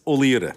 Ó Laoire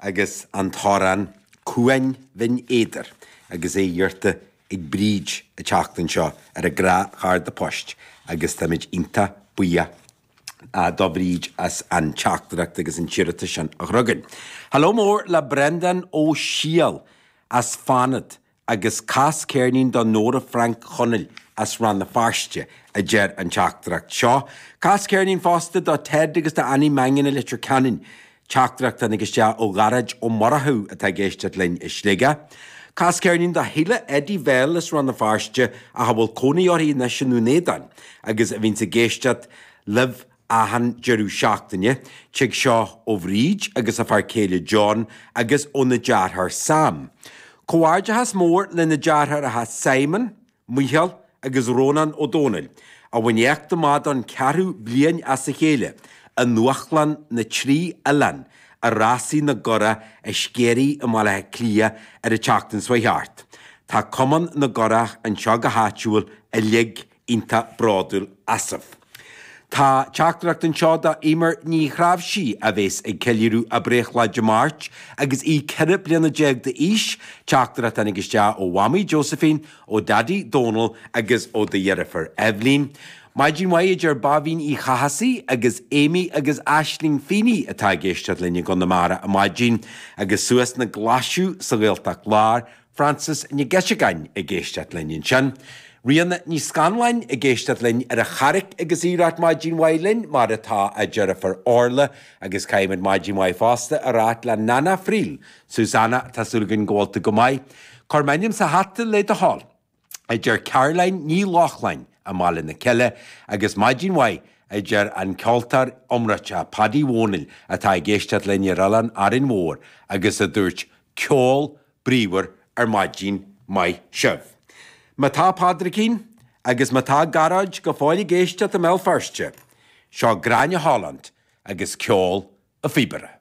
agus an t-amhrán 'Cuain Bhinn Éadair' agus é iarrta ag Bríd a teachtaireacht anseo ar an Ghréasán Phoist agus táimid iontach buíoch do Bhríd as an teachtaireacht agus an t-iarratas sin a chur chugainn. Hello mór le Brendan Ó Siadhail as Fanaid Agus cas ceirnín do Nóra Frainc Chonaill as Rann na Feirste, a deir an teachtaireacht seo. Cas ceirnín fosta do Ted agus do Annie Mangan i Leitir Ceanainn. Teachtaireacht a tháinig isteach ó Ghearóid Ó Murchú atá ag éisteacht linn i Sligeach. Cas ceirnín do Shíle Eddie Bhell as Rann na Feirste ach a bhfuil cónaí uirthi anois i nDún Éideann agus a bhíonns ag éisteacht libh achan deireadh seachtaine, tig seo ó Bhríd agus a fear céile John agus óna deartháir Sam. Comhghairdeachas mór leis na deartháireacha Simon, Micheál agus Rónán Ó Dónaill, a bhain éacht amach don ceathrú bliain as a chéile i nDúshlán na dTrí Oileán i Rásaí na gCurach i Sceirí i mBaile Átha Cliath ar an tseachtain seo a chuaigh thart. Tá Cumann na gCurach anseo go háitiúil uilig iontach bródúil asaibh. Tá teachtaireacht anseo do Eimear Ní Chráibhsí a bhéas ag ceiliúradh a breithlá Dé Máirt agus í ceithre bliana déag d'aois. Teachtaireacht tháinig isteach ó Mhamaí Josephine, ó Daidí Dónal agus ó do dheirfiúr Eibhlín. Maidin mhaith a deir Báibhín Uí Chathasaigh agus Amy agus Aisling Feeney atá ag éisteacht linn i gConamara ar maidin agus suas na Glaisigh sa Ghaeltacht Láir. Frances Nic Géadaigh ag éisteacht linn ansin, Ríona Ní Scanláin ag éisteacht linn ar an Charraig agus í ag rá maidin mhaith linn mar atá a deirfiúr Orla agus caithfimid maidin mhaith fosta a rá le Nana Friel, Susanna, tá súil againn go bhfuil tú go maith. Cuir m'ainm sa hata le do thoil. a deir Caroline Ní Lochlainn i mBaile na Cille, agus maidin mhaith, a deir an ceoltóir iomráiteach Paddy Dhomhnaill atá ag éisteacht linn ar oileán Árainn Mhór agus a dúirt Ceol bríomhar ar maidin maith sibh. Má tá Pádraicín agus má tá Gearóid go fóill ag éisteacht i mBéal Feirste, seo Gráinne Holland agus Ceol a' Phíobaire.